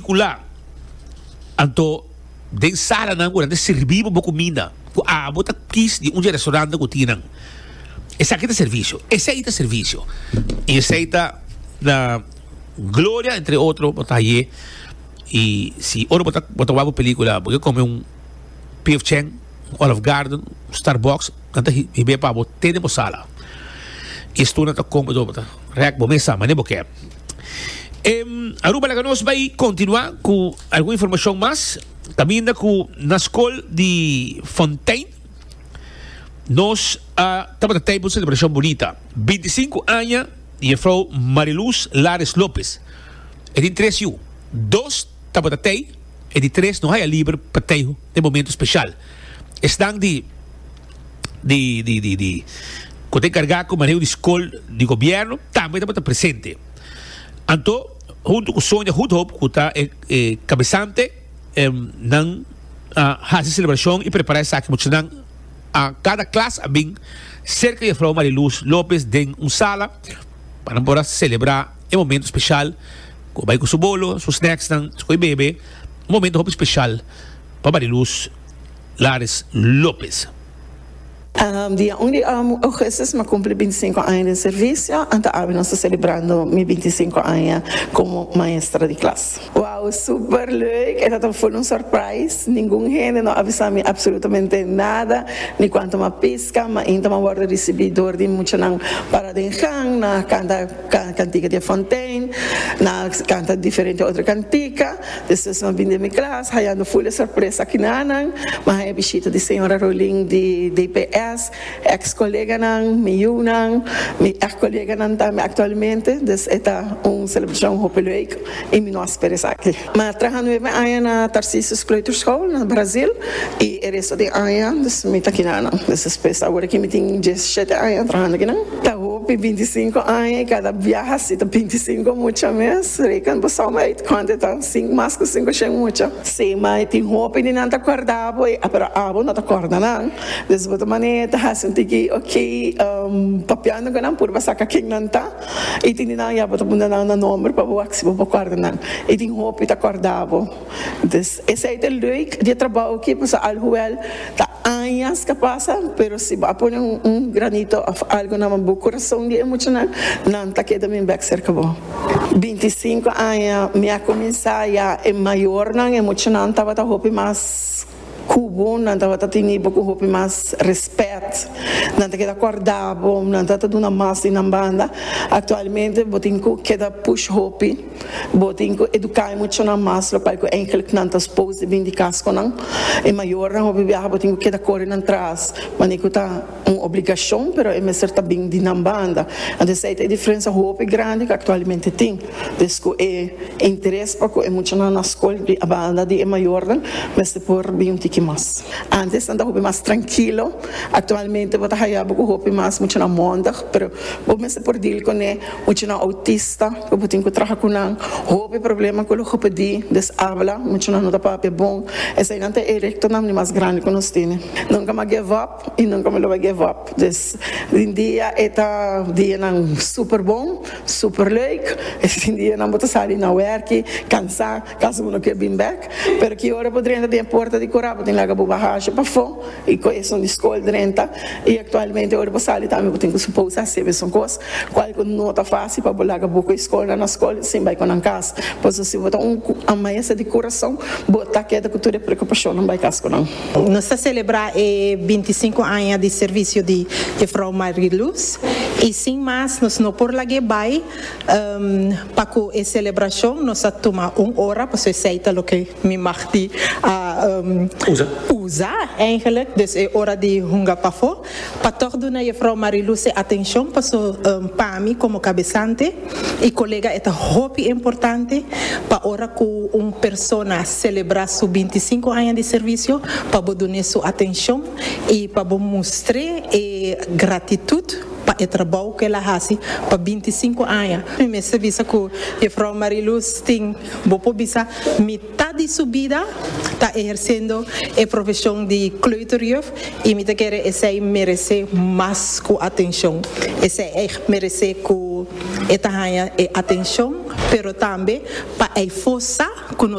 Kula, anto den salanan ku nan ta sirbi bo bo kuminda ku abo ta kis di un dje restourante ku tin nan. Esaki ta servisio. Esei ta servisio. I esei ta na Gloria entre otro bo ta haié. I si ora bo ta bo ta wak bo pelikula bo ke kome un PF Chang, un Olive Garden, un Starbucks, nan ta hib'é pa bo te den bo sala. I e sturnan ta kon bo dor bo ta rèk bo mesa mane bo ke. Em, Aruba laga nos bai continua cu algun informacion mas. Caminda cu na school di Fontein nos a uh, tabata taipo celebracion bonita. 25 aña di juffrouw Mariluz Lares Lopez. E tin tres yu. Dos Tabata tei, e di tres no haya liber pa tei den momento special. Esnan di di di di di cu ta encarga cu maneho di scol di gobierno tambe tabata presente. Anto hunto cu Sonia Goedhoop cu ta e e cabesante nan a haci celebracion y prepara esaki muchanan a cada klas a bin cerca Jefrouw Maria Luz Lopez den un sala pa nan por a celebra. e momento special cu bai cu su bolo, su snacks nan, esco e bebe, un momento hopi special pa Mariluz Lares Lopez. Dia un di Augustus mi a cumpli bintisinco aña den servicio, anto awe nos ta celebrando mi bintisinco aña como maestra di klas. Wow, super leuk, e tabata full un surprise, ningun hende no a bisa mi absolutamente nada, ni cuanto mi a pisca, mainta mi a wordo ricibi door di muchanan para den gang, nan a canta. Cantica di e Fontein, nan a canta diferente otro cantica, despues nan bini den mi clas hayando full di sorpresa aki na nan, mi haya bishita di Señora Rolin di DPS, ex coleganan, mi yunan, mi ex coleganan tambe actualmente, dus e ta un celebracion hopi leuk y mi no a spera esaki. Na traha nuebe aña na Tarcisius Kleuterschool na Brazil y e resto den aña dus mi ta kina nan. Dus despues awor aki mi tin diesisiete aña trahando aki nan. Ta hopi binti sinku aña y cada biaha así ta binti sinku mucha mes. Reken bo som uit cuantu e ta, sinku mas cu sinku shen mucha. Sí, ma e tin hopi di nan ta cuerda bo y pero abo no ta cuerda nan. Dus bo ta manera ta haci un tiki oki papiando cu nan purba saca ken nan ta. I tin di nan ya bo ta puntra nan na nomber pa bo wak si bo por kòrda nan. I tin hopi ta kòrda bo. Dus, esei ta e leuk di e trabou aki pasobra alhuel ta añas ka pasa pero si bo a pone un granito òf algu na bo kurason di e muchanan, nan ta keda min bèk serka bo. Binti sinku aña mi a kuminsá ya e mayornan, e muchanan tabata hopi mas. Kubonan tabata tini bo ku hopi mas rèspèt. Nan ta keda kòrda bo, nan ta ta duna mas di nan banda. Aktualmente bo tin ku keda push hopi, bo tin ku eduká e muchanan mas, lokual ku enkèlk nan ta spose di bin di kas ku nan. E mayornan hopi biaha bo tin ku keda kore nan tras manera ku ta. Un obligashon, pero e mester ta bin di nan banda. Anto esei ta e diferensia hopi grandi ku aktualmente tin. Pues ku e interes pa ku e muchanan na skol bin a banda di e mayornan mester por bin un tiki mas. Antes nan ta hopi mas trankilo, aktualmente bo ta haya bo ku hopi mas muchanan mondig, pero bo mester por deal kuné muchanan outista ku bo tin ku traha ku nan, hopi problema ku lo hupedí, desabla, muchanan no ta papia bon. Eseinan ta e rektonan di mas grandi ku nos tene. Nunka mas give up. y nunca mi lo bai give up, dus den dia e ta dianan super bon, super leuk, es den dianan bo ta sali na werki cansa, casi bo no kier bin bek, pero ki ora bo drenta den e puerta di cura bo tin laga bo bagashi pafo y cu esun di scol drenta y actualmente ora bo sali tambe bo tin cu suposa haci mesun cos, cual cu no ta facil pa bo laga bo cu e scolnan na scol sin bai cu nan cas, pasobra si bo ta un amayesa di curason bo ta keda cu tur e preocupacionnan bai cas cu nan. Nos ta selebrá e binti sinku aña di servisio di Jefrouw Mariluz i sin mas nos no por lag'é bai pa ku e selebrashon nos a tuma un ora paso esei ta loke mi mag di usa, èigenlik. Dus e ora di hunga pafó. Pa tòg duna Jefrouw Marilou se atenshon paso pa mi komo kabesante i kolega e ta hopi importante pa ora ku un persona selebrá su binti sinku aña di servisio pa bo dun'é su atenshon i pa bo mustr'é e gratitut pa e trabou ku el a hasi pa binti sinku aña. Mi mester bisa ku Jefrouw Marilou tin bo por bisa mi. Ta di su bida ta ehersendo e profesion di kleuterjuf y mi ta kere esey merece mas cu atencion. Esey ey merece cu e ta haya e atencion pero tambe pa ey fosa cu